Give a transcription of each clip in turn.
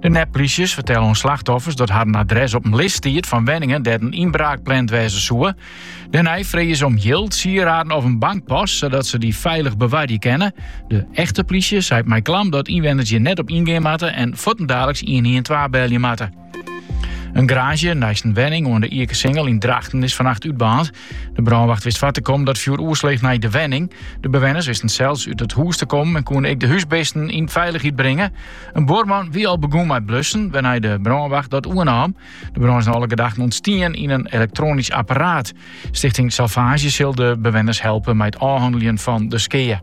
De nepplysjes fertellen oan slachtoffers dat harren adres op in list stiet fan wenningen dêr't in ynbraak pland wêze soe. Dêrnei frege ze om jild, sieraden of in bankpas, sadat ze dy feilich bewarje kinne. De echte plysje seit mei klam dat ynwenners hjir net op yngean moatte en fuortendaliks 112 belje moatte. In garaazje neist in wenning oan de Ikesingel yn Drachten is fannacht útbaarnd. De brânwacht wist foar te kommen dat fjoer oersleech nei de wenning. De bewenners wisten sels út it hûs te kommen en koene ek de húsbisten yn feilichheid bringe. In buorman wie al begûn mei blussen, wêrnei't de brânwacht dat oernaam. De brân is nei alle gedachten ûntstien yn in elektroanysk apparaat. Stichting Salvage sil de bewenners helpe mei it ôfhanneljen fan de skea.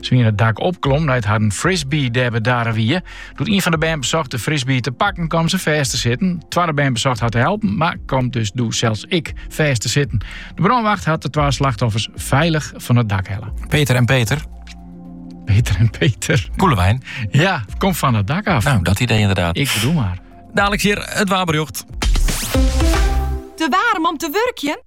Se wienen it dak opklommen nei't harren frisbee dêr bedarre wie. Doe't ien fan de bern besocht de frisbee te pakken, kaam se fêst te sitten. Twadde bern besocht har te helpen, mar kaam dus doe sels ek fêst te sitten. De brânwacht hat de twa slachtoffers feilich fan it dak helle. Peter en Peter. Peter en Peter. Koelewijn. Ja, kom van het dak af. No, dat idee inderdaad. Ik bedoel mar. Dalik hjir it waarberjocht. Te waarm om te wurkjen?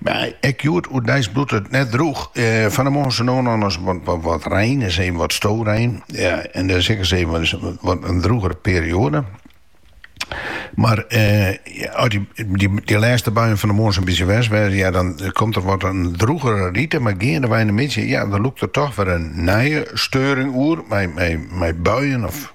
Mar ek hjoed oerdeis bliuwt it net drûch. Fan de moarn sa no en dan ris wat rein, ris even wat storein, en dan is ek ris even wat in drûgere perioade. Mar as dy lêste buien fan de moarn sa'n bytsje west ha, ja, dan komt der wat in drûgere rite, mar geandewei de middei, ja, dan lûkt der toch wer in nije steuring oer mei buien of.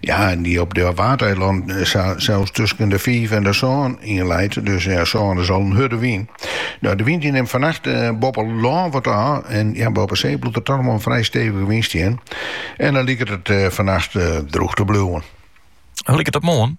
Ja, en dy op de Waadeilannen sa sels tusken de fiif en de sân yn leit. Dus ja, sân is al in hurde wyn. No, de wyn dy nimt fannacht eh, boppe lân wat ôf. En ja, boppe see bliuwt der toch noch wol in frij stevige wyn stean. En dan liket it eh, fannacht eh, drûch te bliuwen. Hoe liket it moarn?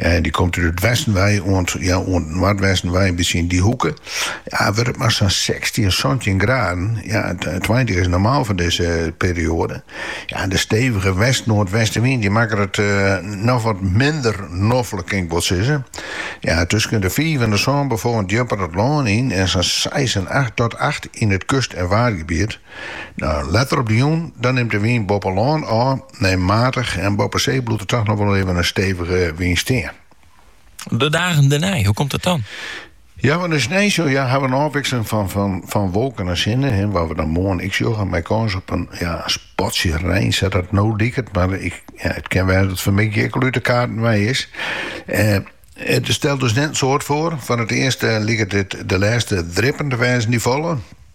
Eh, dy komt út it westen wei oant ja, oant it noardwesten wei, in bytsje yn dy hoeke. Ja, wurdt it mar sa'n 16, 17 graden. Ja, 20 is normaal foar dizze perioade. Ja, de stevige west-noardwestenwyn dy makke it eh, noch wat minder noflik, kin ik wol sizze. Ja, tusken de 5 en de sân Beaufort djipper it lân yn en sa'n 6 en 8 tot 8 yn it kust- en waadgebiet. Letter op de jûn dan nimt de wyn boppe lân ôf nei matich en boppe see bliuwt der toch noch wol even in stevige wyn stean. De dagen dernei, hoe komt dat dan? Ja, woansdei, ja, hawwe we in ôfwikseling fan wolken en sinne, wat we dan moarn ek sjogge, mei kâns op in spatsje rein, sa dat no liket, mar it kin wêze dat it fanmiddei ek al út de kaarten wei is. It stelt dus net in soad foar. Foar it earst liket dit de lêste drippen te wêzen dy't falle.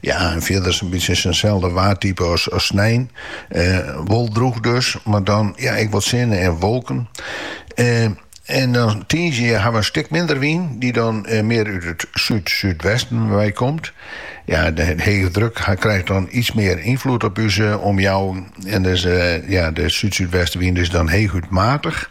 Ja, en fierder in bytsje itselde waartype as snein. wol drûch dus, mar dan ja, ek wat sinne en wolken. En dan tiisdei ha we in stik minder wyn, die dan eh, meer út it súd-súdwesten wei komt. Ja, de hege druk krijt dan iets mear ynfloed op ús eh, omjouwing. En dus, eh, ja, de zuid-zuidwestenwind is dan heeg uit matig.